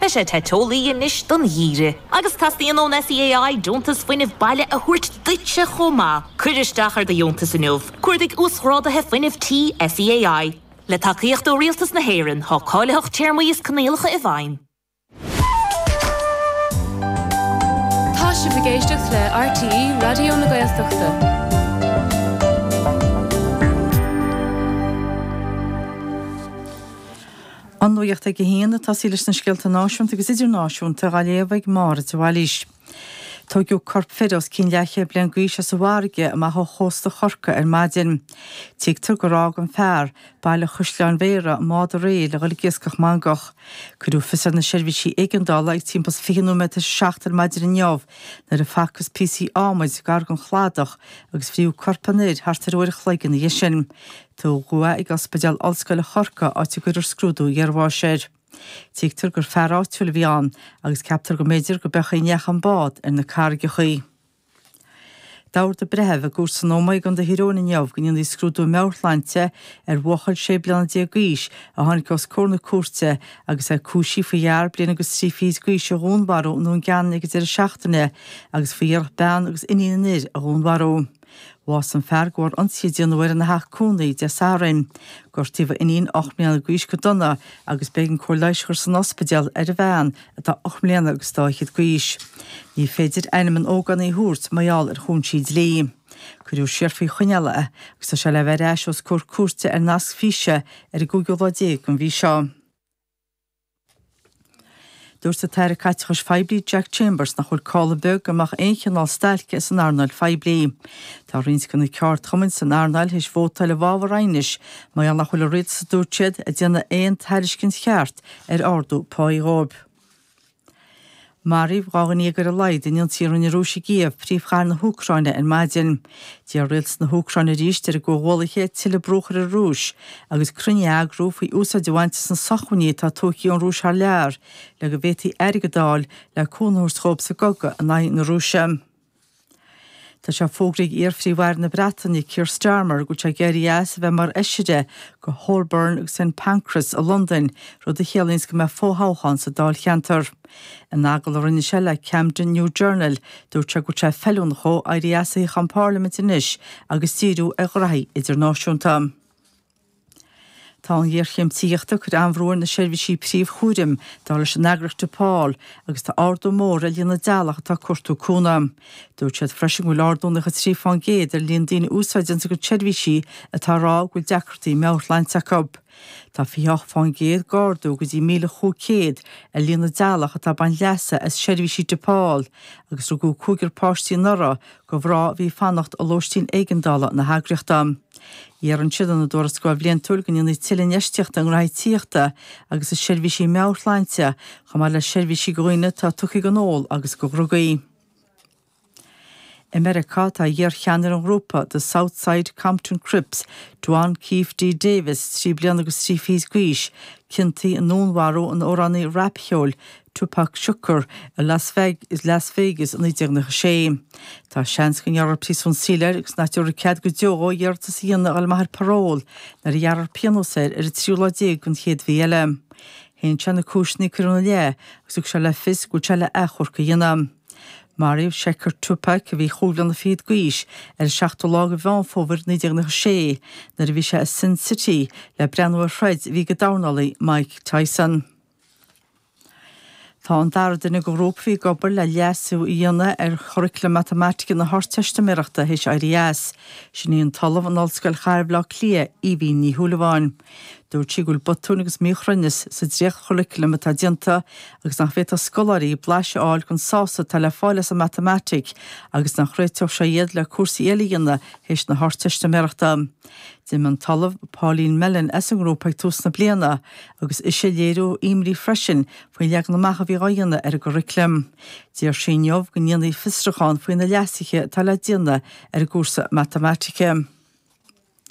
Beidh sé te teolaí anois don gheimhreadh. Agus teastaíonn ón SEAI deontas fuinnimh baile a thabhairt duitse chomh maith. Cuir isteach ar do dheontas inniu. Cuardaigh 'Uasghráduithe Fuinnimh Tí SEAI'. Le tacaíocht ó Rialtas na hÉireann, tá cáilitheacht, téarmaí is coinníollacha i bhfeidhm. Tá sibh ag éisteacht le RTÉ Raidió na Gaeltachta. An nuaíocht ag a haon tosaí leis na scéalta náisiúnta agus idirnáisiúnta dhá léamh ag Máire de Bhailís. Tóigeadh corp fir os cionn leathchéad bliain d'aois as an bhfarraige amach ó chósta Chorcaí ar maidin. Tuigtear gur fhág an fear, Baile Chaisleáin Bhéarra, i mbád aréir le dhul ag iascach mangach. Cuireadh fios ar na seirbhísí éigeandála ag timpeall 's fiche nóiméad tar éis a seacht ar maidin inniu nuair a facthas píosaí ádhmaid gar gon chladach agus fríothadh corp an fhir thart ar uair a chloig ina dhiaidh sin. Tugadh é ag Ospidéal Ollscoile Chorcaí áit a gcuirfear scrúdú iarbháis air. Tuigtear gur fear áitiúil a bhí ann agus ceaptar go mb'fhéidir go b'amhlaidh a chuaigh an bád ar na carraigeachaí. D'ordaigh an breitheamh i gcúirt san Ómaigh i gContae Thír Eoghain inniu go ndéanfaí scrúdú meabharshláinte ar bhuachaill sé bliana déag d'aois a tháinig os comhair na cúirte agus é cúisithe faoi fhear bliain agus trí fichid d'aois a dhúnmharú i nDún Geanainn ag an deireadh seachtaine agus faoi iarracht bean agus iníon an fhir a dhúnmharú. Bhásaigh an fear go bharr ionsaí a déanadh air ina theach cónaí Dé Sathairn. Gortaíodh a iníon ocht mbliana d'aois go dona agus b'éigean cóir leighis a chur san ospidéal ar a bhean atá ocht mbliana agus dá fhichead d'aois. Ní féidir ainm an ógánaigh a thabhairt mar gheall ar chúinsí dlí. Cuireadh siar faoi choinneáil é agus tá sé le bheith ar ais os comhair cúirte ar nasc físe ar an gcúigiú lá déag den mhí seo. Dúirt an tAire Caiteachais Phoiblí Jack Chambers nach bhfuil call ar bith go mbeadh aon chineál stailce san earnáil phoiblí. Tá roinnt de na ceardchumainn san earnáil théis vótáil i bhfabhar aighnis mar gheall nach bhfuil an Rialtas, a dúirt siad, ag déanamh aon tairiscint cheart ar ardú páí dhóibh. Maraíodh dhá dhuine dhéag ar a laghad in ionsaithe a rinne an Rúis i gCív, príomhchathair na hÚcráine, ar maidin. D'iarr Rialtas na hÚcráine arís ar a gcomhghuallaithe tuilleadh brú a chur ar an Rúis agus cruinniú a eagrú faoi úsáid a bhaint as na sócmhainní atá tógtha ón Rúis thar lear le go bhféadfaí airgead a fháil le cúnamh a thabhairt dhóibh sa gcogadh in aghaidh na Rúise. Tá sé fógraithe ag iar-Phríomh-Aire na Breataine Keir Starmer go bhfuil sé ag éirí as a bheith mar Fheisire do Holborn agus St Pancras i Londain, rud a chiallaíonns go mbeidh fo-thoghchán sa dáilcheantar. In agallamh a rinne sé le Camden New Journal, dúirt sé go bhfuil sé feiliúnach dhó éirí as Tithe na Parlaiminte anois agus díriú ar ghraithí idirnáisiúnta. Tá an ghéarchéim tithíochta ag cur an-bhrú ar na seirbhísí príomhchúraim, dar leis an eagraíocht Depaul, agus tá ardú mór ar líon na dteaghlach atá ag cuartú cúnamh. Dúirt siad freisin go bhfuil ardú 93 fán gcéad ar líon na ndaoine a úsáideanns a gcuid seirbhísí atá ag rá go bhfuil deacrachtaí meabhairshláinte acu. Tá 28 fán gcéad d'ardú go dtí míle chúig céad ar líon na dteaghlach atá ag baint leasa as seirbhísí Depaul agus rugadh cúigear páistí anuraidh, do mhná a bhí fanacht i lóistín éigeandála na heagraíochta. Iarrann siad ina dtuarascáil bhliantúil go ndéanfaí tuilleadh infheistíochta i ngnóthaí tithíochta agus i seirbhísí meabhairshláinte, chomh maith le seirbhísí do dhaoine atá tugtha ag an ól agus do dhrugaí. I Meiriceá, tá iar-cheannaire an ghrúpa, The South Side Compton Crips, Duane Keffe D. Davis, trí bliana agus trí fichid d'aois, ciontaithe i ndúnmharú an amhránaí rapcheoil, Tupac Shakur i Las Vegas i 1996. Tá seans go ngearrfar príosún saoil air agus nach dtabharfar cead go deo dhó iarratas a dhéanamh a fháil amach ar parole nuair a ghearrfar pionós air ar an tríú lá déag den chéad mhí eile. Shéan sé na cúiseanna a cuireadh ina leith agus thug sé le fios go bhfuil sé le athchomharc a dhéanamh. Maraíodh Shakur, Tupac, a bhí chúig bhliana fichead d'aois, ar an seachtú lá de Mheán Fómhair 1996 nuair a bhí sé i Sin City le breathnú ar throid a bhí ag an dornálaí Mike Tyson. Tá an dara duine den ghrúpa a bhí ag obair le leasú a dhéanamh ar churaclam matamaitice na hArdteistiméireachta théis éirí as. Sin í an tOllamh in Ollscoil Chathair Bhaile Átha Cliath, Aoibhín Ní Shúilleabháin. Dúirt sí go bhfuil botúin agus míchruinneas sa dréachtchuraclam atá déanta agus nach bhféadfadh scoláirí blaiseadh a fháil den sásamh atá le fáil as an matamaitic agus nach réiteodh sé iad le cúrsaí eile a dhéanamh théis na hArdteistiméireachta. D'imigh an tOllamh Pauline Mellon as an ngrúpa ag tús na bliana agus ise a léiriú imní freisin faoin leagan amach a bhí á dhéanamh ar an gcuraclam. D'iarr sí inniu go ndéanfaí fiosrúchán faoi na leasuithe atá le déanamh ar an gcúrsa matamaitice.